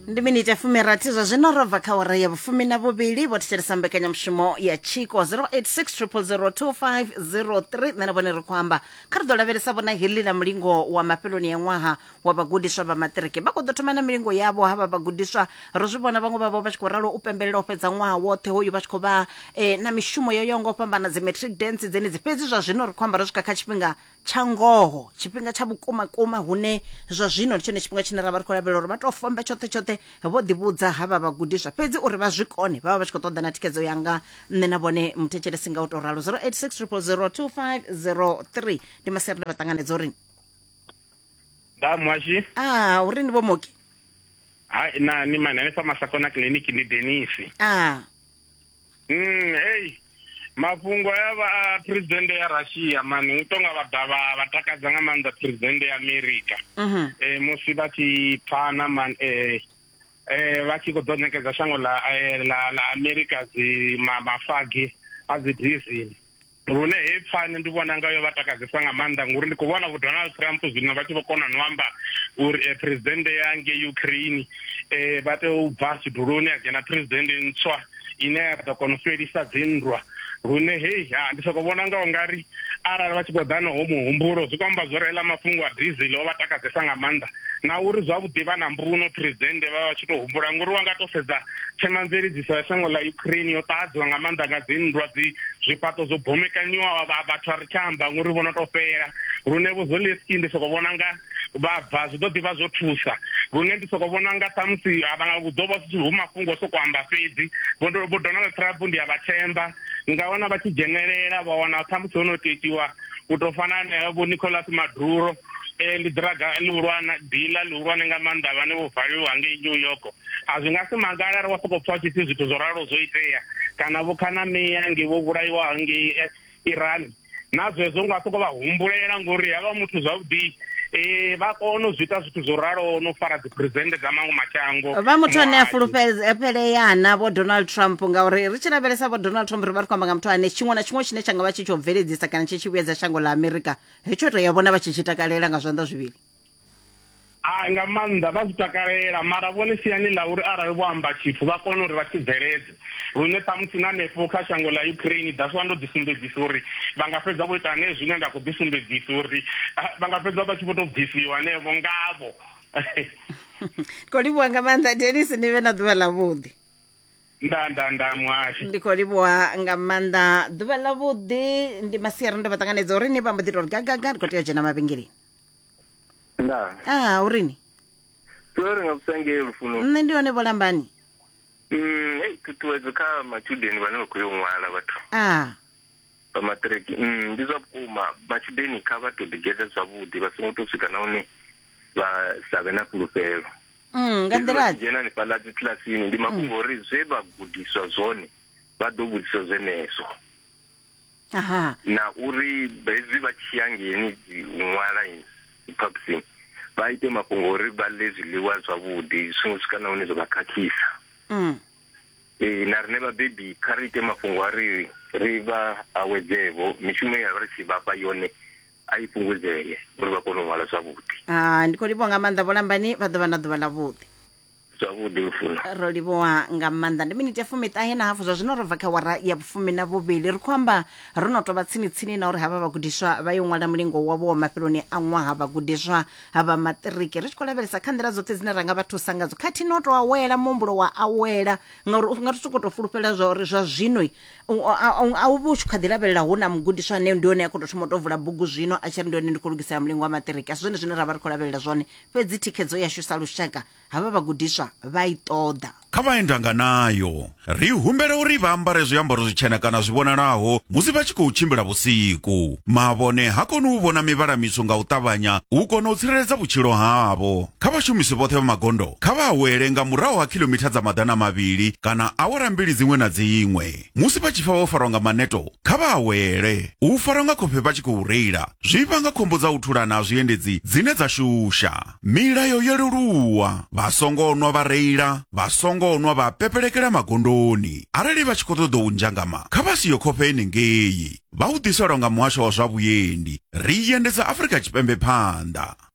ndi miniti ya fumirathi zwa zwino ro bva kha ora ya vhufumi na vhuvhili vho thetshelesa mbekanyamushumo ya tshiko 0860005003 nṋe na vhone ri khou amba kha ri ḓo lavhelesa vhona heḽi ḽa mulingo wa mafheloni ya ṅwaha wa vhagudiswa vha maṱiriki vha khou ḓo thoma na milingo yavho ha vha vhagudiswa ro zwi vhona vhaṅwe vhavho vha tshi khou ralo u pembelela u fhedza ṅwaha woṱhe hoyu vha tshi khou vha eh, na mishumo yo yaho nga u fhambana dzi matric dance dzenedzi fhedzi zwa zwino ri khou amba ro swika kha tshifhinga tsha ngoho tshifhinga tsha vhukuma kuma hune zwa zwino ndi tshone tshifhinga tshine ra vha ri khou lavhelela uri vha tou fombe tshoṱhe tshoṱhe vho ḓivhudza ha vha vhagudiswa fhedzi uri vha zwi kone vha vha vha tshi khou ṱoḓa na thikhedzo yanga nṋe na vhone muthetshelesi nga u tou ralo 0860002503 ndi maseri nda vha ṱanganedza uri da mwashi a uri ni vho moki ha na ni mani hanefha masakona kiliniki ndi denisi a Mm, hey mafhungo ya vha a president ya Russia mani u tonga vha dovha vha takadza nga maanḓa president ya America mhm. eh musi vha tshi phana man eh eh vha tshi khou ḓo ṋekedza shango ḽa eh, ḽa ḽa America dzi mafagi a dzi diesel lune heyi pfani ndi vhona nga yo vha takadzesa nga maanḓa ngori ndi khou vhona vho donald trump zwino vha tshi vho kona no amba uri eh, presidente ya nge ukraine um vha tea u bva tshiduloni a dzhena presidente ntswa ine ya ḓo kona u fhelisa dzinndwa lune heyi ha ndi soko vhona nga u nga ri arali vha tshi khou ḓa noho muhumbulo zwi khou amba zwo reila mafhungo a diesel o vha takadzesa nga maanḓa na uri zwavhuḓi vha na mbuno presidente vha vha tshi tou humbula ngori wa nga tou sedza Themamveledziso ya shango ḽa Ukraine yo ṱahadzwa nga maanḓa nga dzinndwa, dzi zwifhaṱo zwo bomekanyiwaho, vha vhathu a ri tsha amba ngori vho no tou fhela. Lune vho Zelensky ndi soko vhona nga vha bva zwi ḓo ḓi vha zwo thusa. Lune ndi soko vhona nga ṱhamusi a vha hu ḓo vha zwi tshi hu mafhungo o soko amba fhedzi. Vho vho Donald Trump ndi a vha themba nga wana vha tshi dzhenelela vha wana ṱhamusi ho no tou itiwa u tou fana na vho Nicolas Maduro. E, ndi ḓiraga ḽihulwane dila ḽihulwane nga maanḓa vhane vho valiwa ngei new york a zwi nga si magala ri wa sokou pfa tshipfi zwithu zwo ralo zwo itea kana vho khanamea ngei vho vhulaiwa ngei eh, iran na zwezwo nga sokou vha humbulela ngori havha muthu zwavhuḓi um vha kona u zwi ita zwithu zwo raloho no fara dziphresidennde dza maṅwe mashango vha muthu ane a fulufheleana vho donald trump ngauri ri tshi lavhelesa vho donald trump ri vha ri khou amba nga muthu ane tshiṅwe na tshiṅwe tshine tsha nga vha tshi tsho bveledzisa kana tshi tshi vhuyedza shango ḽa amerika hetsho to ya vhona vha tshi tshi takalela nga zwanḓa zwivhili a nga maanḓa vha zwi takalela mara vhone siani ḽa uri arali vho amba tshithu vha kone uri vha tshi bveledze lune ṱhamusi na nefho kha shango ḽa ukraine daswa ndo ḓisumbedzisa uri vha nga fhedza vho ita ane zwine nda khou ḓisumbedzisa uri vha nga fhedza vha tshi vho tou bvisiwa hanevho ngavho ndi khou livhuwa nga maanḓa denis ni vhe na ḓuvha ḽa vhuḓi nda nda nda muhasho ndi khou livhuwa nga maanḓa ḓuvha ḽa vhuḓi ndi masiari ndo vha ṱanganedza uri ni vha mbo ḓi tori gagaga ndi khou tea u dzhena mavhengeleni nda a urini tea uri nga vhusangee lufuno nṋe ndi hone vholambani Mm, hei ṱhuṱhuwedzo kha matshudeni vhane vha khou yo ṅwala vhathu a vha maṱiriki Mm, ndi zwa vhukuma matshudeni kha vha to ḓigeḓa zwavhuḓi vha songo to swika na hune vha sa vhe na fhulufhelo mm, nga nḓila dzhena hanefhaḽa dzi kilasini ndi mafhungo uri zwe vha gudiswa zwone vha ḓo vhudzisa zwenezwo aha na uri hezwi vha tshi ya ngeni dzi ṅwala phaphusini vha ite mafhungo uri vha ḽe zwiḽiwa zwavhuḓi zwi songo swika na hune zwa vha khakhisa mm. ee na rine vhabebi kha ri ite mafhungo a ri ri vha awedzevo mishumo ye ya vha ri tshi vhafha yone a i fhungudzee uri vha kone u ṅwala zwavhuḓi Ah, ndi khou livhuwa nga maanḓa vho lambani vha ḓo vha na ḓuvha ḽavhuḓi zwavhuḓi lufuno ro livhuwa nga maanḓa ndi miniti ya fumiṱahe na hafu zwa zwino ro bva kha wara ya vhufumi na vhuvhili ri khou amba ro no tovha tsini tsini na uri havha vhagudiswa vha yo ṅwala mulingo wavho wa mafheloni a ṅwaha vhagudiswa vha maṱiriki ri tshi khou lavhelesa kha nḓila dzoṱhe dzine ra nga vha thusa ngadzo khathihi no tou awela muhumbulo wa awela ngauri u nga ri sokou tou fulufhela zwa uri zwa zwino A u vha u tshi kha ḓi lavhelela hu na mugudiswa ane ndi hone a khou tou thoma u tou vula bugu zwino a tshi ri ndi hone ndi khou lugisela mulingo wa maṱiriki. A si zwone zwine ra vha ri khou lavhelela zwone, fhedzi thikhedzo yashu sa lushaka havha vhagudiswa vha i ṱoḓa. Kha vha ye ndanga nayo. Ri humbela uri vha ambare zwiambaro zwitshena kana zwi vhonalaho musi vha tshi khou tshimbila vhusiku. Mavhone ha koni u vhona mivhala mitswu nga u ṱavhanya u kona u tsireledza vhutshilo havho. Kha vhashumisi vhoṱhe vha magondo kha vha awele nga murahu ha khilomitha dza maḓana mavhili kana awara mbili dziṅwe na dziṅwe. Musi vha tshi pfa vho farwa nga maneto, kha vha awele. U farwa nga khofhe vha tshi khou reila zwi vhanga khombo dza u thulana ha zwiendedzi dzine dza shusha. Milayo yo leluwa, Vha songo nwa vha reila, vha songo nwa vha pepelekela magondoni. Arali vha tshi khou ṱoḓa u nzhangama, kha vha siyo khofhe henengei. Vha u ḓiselwa nga Muhasho wa zwa Vhuendi, ri i endedza Afrika Tshipembe phanḓa.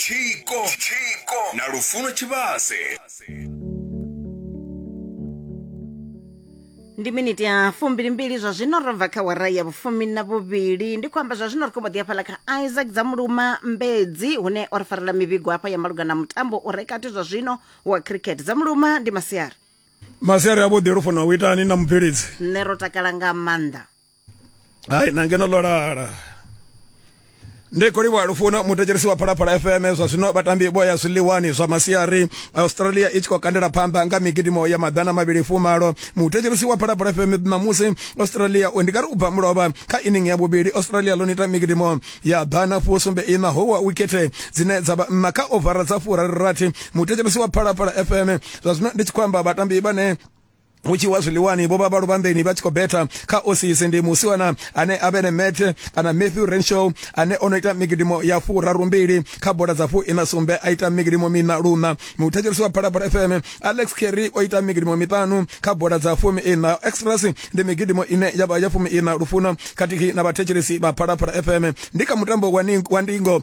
tshiko na lufuno tshivhase ndi miniti ya fumbilimbili zwa zwino ro bva kha wara ya vhufumi na vhuvhili ndi khou amba zwa zwino ri khou mbo ḓi hafhaḽa kha isaac dza muluma mbedzi hune o ri farela mivhigo hafha ya maluga na mutambo u re kati zwa zwino wa cricket dza muluma ndi masiari masiari avhuḓi lufuna u itani na mubveledzi nṋe ro takala nga maanḓa hai na ngeno ḽo lala ndi khou livhuwa lufuno muthetshelisi wa phalaphala fm zwa zwino vhatambi vho ya zwiḽiwani zwa masiari australia i tshi khou kandela phanḓa nga migidimo ya maḓana mavhili fumalo muthetshelisi wa phalaphala fm ṋamusi australia ndi nga ri u bva mulovha kha inning ya vhuvhili australia ḽo nita migidimo ya ḓana fusumbe ina ho wa wikhethe dzine dza vha nna kha ovara dza furarirathi muthetshelisi wa phalaphala fm zwa zwino ndi tshi khou amba vhatambi vhane hu tshi wa zwiḽiwani vho vha vha luvhanḓeni vha tshi khou betha kha osisi ndi musiwana ane a vhene mete kana matthew renshaw ane o no ita migidimo ya furaru mbili kha bola dza fu ina sumbe a ita migidimo mina luna muthetshelisi wa phalaphala fm alex kerry o ita migidimo miṱanu kha bola dza fumi ina express ndi migidimo ine ya vha ya fumi ina lufuna khathihi na vhathetshelesi vha phalaphala fm ndi kha mutambo wa ndingo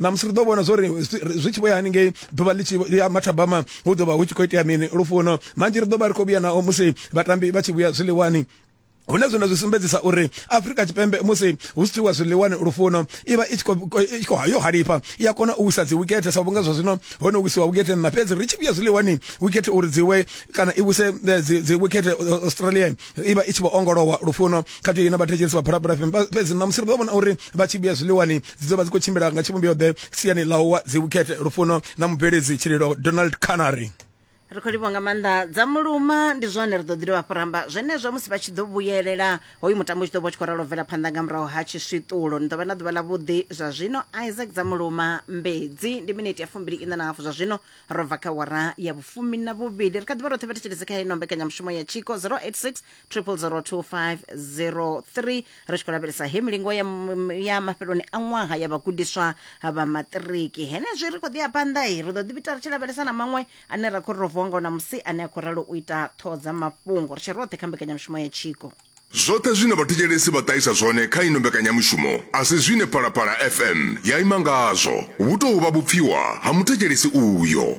ṋamusi ri ḓo vhona zwo ri zwi tshi vho ya haningei ḓuvha ḽi tshi ya mathabama hu ḓo vha hu tshi khou itea mini lufuno manzhi ri ḓo vha ri khou vhuya nao musi vhatambi vha tshi vhuya zwiḽiwani hune zwino zwi sumbedzisa uri afrika tshipembe musi hu si tsiwa zwiḽiwani lufuno i vha i tshi khou yo halifha i a kona u wisa dzi wikethe sa vhunga zwa zwino ho no wisiwa wikethe nṋa fhedzi ri tshi vhuya zwiḽiwani wikethe uri dzi we kana i wise eh, dzi wikethe eh, australia i vha i tshi vho ongolowa lufuno khathihi na vhathetshelisi vha phalaphala fhedzi ṋamusi ri ḓo vhona uri vha tshi vhuya zwiḽiwani dzi ḓo vha dzi khou tshimbila nga tshivhumbeo-ḓe siani ḽa uwa dzivhukhethe lufuno na mubveledzi tshililo donald canary ri khou livhwa nga maanḓa dza muluma ndi zwone ri ḓo ḓi dovha fhuramba zwenezwo musi vha tshi ḓo vhuyelela hoyu mutambo u tshi ḓo vha tshi khou ralo bvela phanḓa nga murahu ha tshiswiṱulo ni ḓo vha na ḓuvha ḽa vhuḓi zwa zwino isaac dza muluma mbedzi ndi miniti ya fumbili iṋa na hafu zwa zwino ro bva kha wara ya vhufumi na vhuvhili ri kha ḓivha roṱhe vha thetshelese kha ino mbekanyamushumo ya tshiko 086 triple zero two five zero three ri tshi khou lavhelesa he milingo ya, m- ya mafheloni a ṅwaha ya vhagudiswa vha maṱiriki henezwi ri khou ḓi ya phanḓa i ri ḓo ḓi ita ri tshi lavhelesa na maṅwe ane ra khou ri ro vuwa ngao namusi ane a khou ralo u ita ṱhoho dza mafhungo ri tshi roṱhe kha mbekanyamushumo ya tshiko zwoṱhe zwine vhathetshelesi vha ṱahisa zwone kha ino mbekanyamushumo a si zwine phalaphala fm ya ima ngazwo hu tou vha vhupfiwa ha muthetshelesi uyo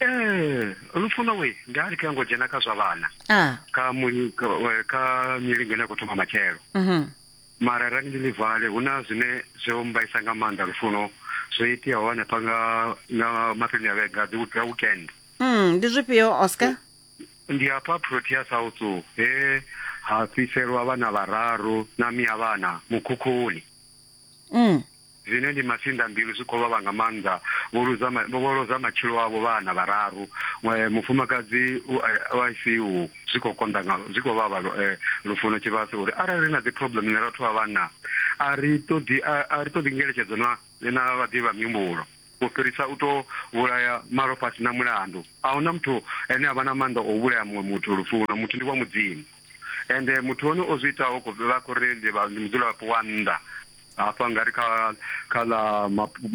ee lufuno we ndi a lika ngo dzhena kha zwa vhana ah. kha muli kha milingo ine ya khou thoma matshelo mm -hmm. mara rani ndi livale hu na zwine zwo mbaisa nga maanḓa lufuno zwo iteaho hanefha nga nga mafheloni a vhega dzi weekend mm, ndi zwifhio oscar ndi hafha protea south he ha fhiselwa vhana vhararu na miya vhana mukhukhuni mm. Zwine ndi masinḓambilu zwi khou vhavha nga maanḓa. Vho luza ma, vho lozha matshilo avho vhana vhararu. Mwe, mufumakadzi u a, u a ICU. Zwi khou konḓa nga, zwi khou vhavha lu, eh, Lufuno Tshivhase u ri, Arali ri na dzi problem na vhathu vha vhanna, a ri ṱoḓi, a, a ri ṱoḓi ngeletshedzo na, na vhaḓivhi vha mihumbulo, u fhirisa u tou vhulaya malofha a si na mulandu. A hu na muthu ane a vha na maanḓa o vhulaya muṅwe muthu, Lufuno. Muthu ndi wa Mudzimu. Ende muthu hone o zwi itaho, vha khou ri ndi, vha, ndi mudzulapo wa nnḓa. hafha nga ri kha kha ḽa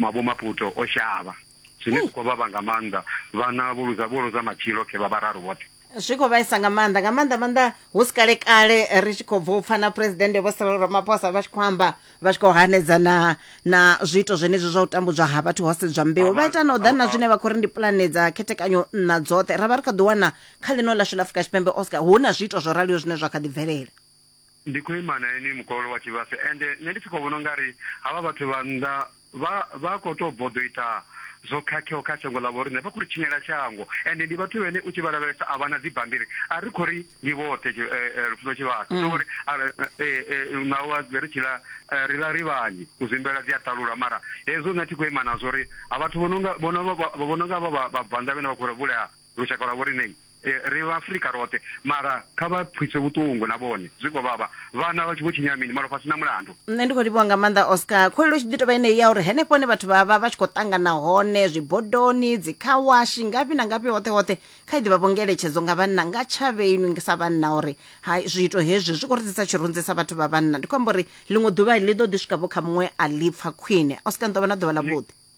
mavho maputo o shavha zwine zwi khou vhavha nga maanḓa vhana vho luza vho luza matshilo khe vha vhararu vhoṱhe zwi khou vhaisa nga maanḓa nga maanḓa maanḓa hu si kale kale ri tshi khou bva u pfana phuresidennde vho sirelo ramaphosa vha tshi khou amba vha tshi khou hanedza na na zwiito zwenezwi zwa u tambudzwa ha vhathu ho sedzwa mbeu vha ita na u ḓa na zwine vha khou ri ndi pulane dza khethekanyo nna dzoṱhe ra vha ri kha ḓi wana kha ḽino ḽashu ḽa afrika tshipembe oscar hu na zwiito zwo raliho zwine zwa kha ḓi bvelela Ndi khou ima na inwi mukololo wa tshivhase ende nṋe ndi tshi khou vhona u nga ri havha vhathu vha nnḓa vha vha khou tou bvo ḓo ita zwo khakheaho kha shango ḽa vhoriṋe. Vha khou ri tshinyela shango ende ndi vhathu vhene u tshi vha lavhelesa a vha na dzibammbiri. A ri khou ri ndi vhoṱhe Lufuno Tshivhase ndi uri naho ha ri tshi ḽa ri ḽa ri vhanzhi, u zwimbela dzi a ṱalulwa mara hezwo nṋe a thi khou ima nazwo uri vhathu vho no nga vho no nga vha vhabvannḓa vhane vha khou ri vhulaha lushaka lwa vhoriṋei, ri Vhaafrika roṱhe. Mara kha vha pfiswe vhuṱungu na vhone, zwi khou vhavha. Vhana vha tshi vho tshinya mini? Malofha a si na mulandu. Nṋe ndi khou livhuwa nga maanḓa Oscar. Khuwelelo i tshi ḓi tou vha yeneyi ya uri henefho hune vhathu vha vha vha tshi khou ṱangana hone, zwibodoni, dzi khawashi, ngafhi na ngafhi, hoṱhe hoṱhe, kha i ḓi vha vho ngeletshedzo nga vhanna, nga tshavhe inwi sa vhanna uri hai zwiito hezwi zwi khou ri ḓisa tshirunzi sa vhathu vha vhanna. Ndi khou amba uri ḽiṅwe ḓuvha ḽi ḓo ḓi swika vho kha muṅwe a ḽi pfa khwine. Oscar, ni ḓo vha na ḓuvha ḽavhuḓi.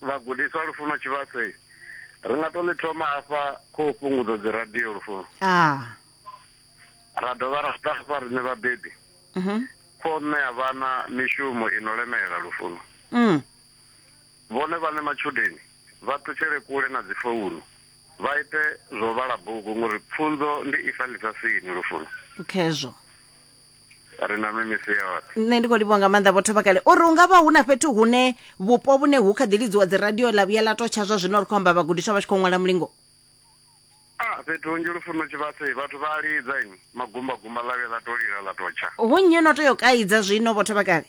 Vhagudiswa, Lufuno Tshivhase, ri nga tou ḽi thoma hafha kho u fhungudza dzi radio lufuno. Ah. Ra dovha ra ḓa hafha riṋe vhabebi. Mhm. Kho u ṋea vhana mishumo i no lemela lufuno. Mm. Vhone vhaṋe matshudeni vha ṱutshele kule na dzi founu, vha ite zwa u vhala bugu ngori pfunzo ndi ifa ḽisasini lufuno. Khezwo. ri na mimisi yoṱhe nṋe ndi khou livhuwa nga maanḓa vhotho vha kale uri u nga vha hu na fhethu hune vhupo vhune hu kha ḓi lidziwa dziradio ḽa vhuya ḽa totsha zwa zwino ri khou amba vhagudiswa vha tshi khou ṅwala mulingo a fhethu hunzhi lufuno tshivhase vhathu vha a lidza ini magumbagumba ḽa vhuya ḽa to lila ḽa totsha hu nnyi no tea u kaidza zwino vhotho vha kale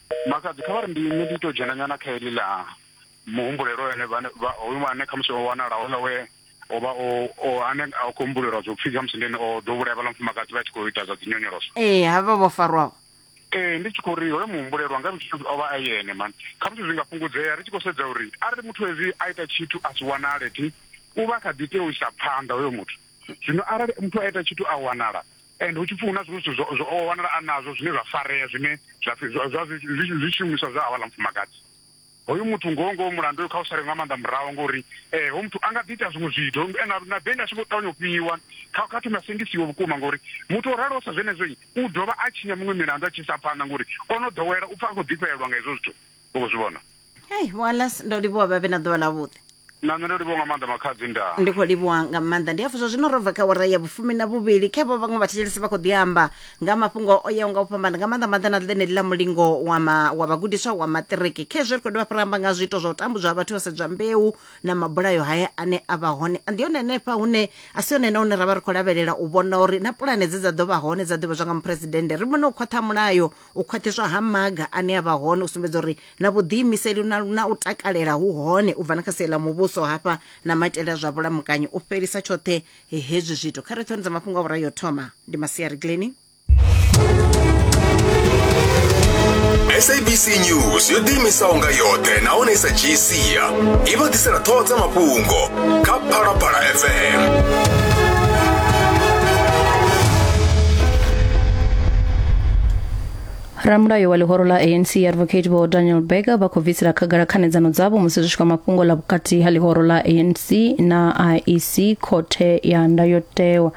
Makhadzi kha vha ri ndi nṋe ndi tou dzhena nyana kha heḽi ḽa muhumbulelo ene hoyu ane khamusi o wanala houḽa we o vha o ane a khou humbulelwa zwo pfhi khamusi ndi ene o ḓo vhulaya vhaḽa mufumakadzi vha tshi khou ita zwa dzi nyonyoloso ee ha vha vho farwaho ee ndi tshi khou ri hoyo muhumbulelwa nga muthu o vha a yene mani khamusi zwi nga fhungudzea ri tshi khou sedza uri arali muthu hezwi a ita tshithu a si wanale thi u vha kha ḓi tea u isa phanḓa hoyo muthu zwino arali muthu a ita tshithu a wanala Ende hu tshi pfi hu na zwiṅwe zwithu zwo o wanala a nazwo zwine zwa farea zwine zwa pfi zwa zwa zwi zwi zwi shumiswa zwa havhaḽa mufumakadzi. Hoyu muthu ngoho ngoho mulandu hoyu kha u sale nga maanḓa murahu ngori eh hoyu muthu a nga ḓi ita zwiṅwe zwithu hoyu muthu ene na beli a tshi vho ṱavhanya u fhiwa kha kha thome a sengisiwe vhukuma ngori muthu o raloho sa zwenezwo u dovha a tshinya miṅwe milandu a tshi isa phanḓa ngori o no ḓowela u pfa a khou ḓifhelelwa nga hezwo zwithu. u khou zwi vhona hei walas ndo livhuwa vhavhe na ḓuvha ḽavhuḓi na nṋe ndo livhuwa nga maanḓa makhadzi ndaa ndi khou livhuwa nga maanḓa ndi hafhu zwa zwino ro bva kha wara ya vhufumi na vhuvhili khe vho vhaṅwe vhathetshelesi vha khou ḓi amba nga mafhungo o yaho nga u fhambana nga maanḓa maanḓa na ḽeneli ḽa mulingo wa ma- wa vhagudiswa wa maṱiriki khezwo ri khou dovha fhira amba nga zwiito zwa u tambudzwa ha vhathu vha sedzwa mbeu na mabulayo haya ane a vha hone ndi hone henefha hune a si hone na hune ra vha ri khou lavhelela u vhona uri na pulane dze dza ḓo vha hone dza ḓivhadzwa nga muphuresidennde ri vhone u khwaṱha mulayo u khwaṱhiswa ha maga ane a vha hone u sumbedza uri na vhuḓiimiseli na, na u takalela hu hone u bva na kha sie ḽa muvhuso hafha na maitele a zwa vhulamukanyi u fhelisa tshoṱhe hezwi zwithu kha rethoni dza mafhungo a vhura yo thoma ndi masiari gleni sabc news yo ḓiimisaho nga yoṱhe nahone i sa dzhii sia i vha ḓisela ṱhoho dza mafhungo kha phalaphala fm ramulayo wa ḽihoro ḽa anc advocate vho daniel berger vha khou bvisela khagala khanedzano dzavho musi zwi tshi kwa mafhungo ḽa vhukati ha ḽihoro ḽa anc na iec khothe ya ndayotewa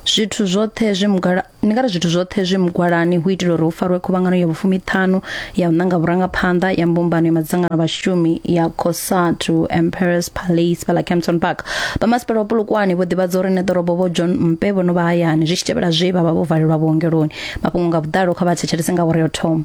zwithu zwoṱhe zwi mugala ndi nga ri zwithu zwoṱhe zwi mugwalani hu itela uri hu farwe khuvhangano ya vhufumi ṱhanu ya u ṋanga vhurangaphanḓa ya mbumbano ya madzangano a vhashumi ya cosatu emperors palace fhala campton park vhamasipala wa polokwane vho ḓivhadza uri neḓorobo vho john mpe vho no vha hayani zwi tshi tevhela zwe vha vha vho valelwa vhuongeloni mafhungo nga vhuḓalo kha vha thetshelese nga uri yo thoma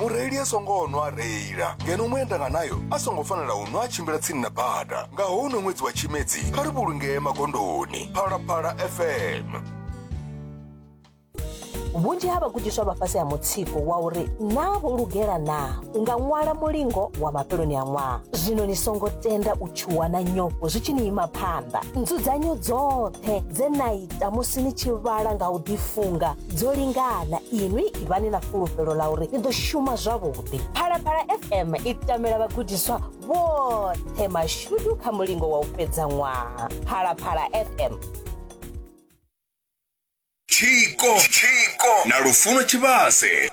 mureili a songo nwa a reila ngeno muendanga nayo a songo fanela u nwa a tshimbila tsini na bada nga houno ṅwedzi wa tshimedzi kha ri vhulungee magondoni phalaphala fm vhunzhi ha vhagudiswa vha fhasi ha mutsiko wa uri naa vho lugela naa u nga ṅwala mulingo wa mafheloni a ṅwaha zwino ni songo tenda u tshuwa na nyofho zwi tshi ni ima phanḓa nzudzanyo dzoṱhe dze na i ita musi ni tshi vhala nga u ḓifunga dzo lingana inwi ivhani na fhulufhelo ḽa uri ni ḓo shuma zwavhuḓi phalaphala fm i tamela vhagudiswa vhoṱhe mashudu kha mulingo wa u fhedza ṅwaha phalaphala fm tshiko na lufuno tshivhase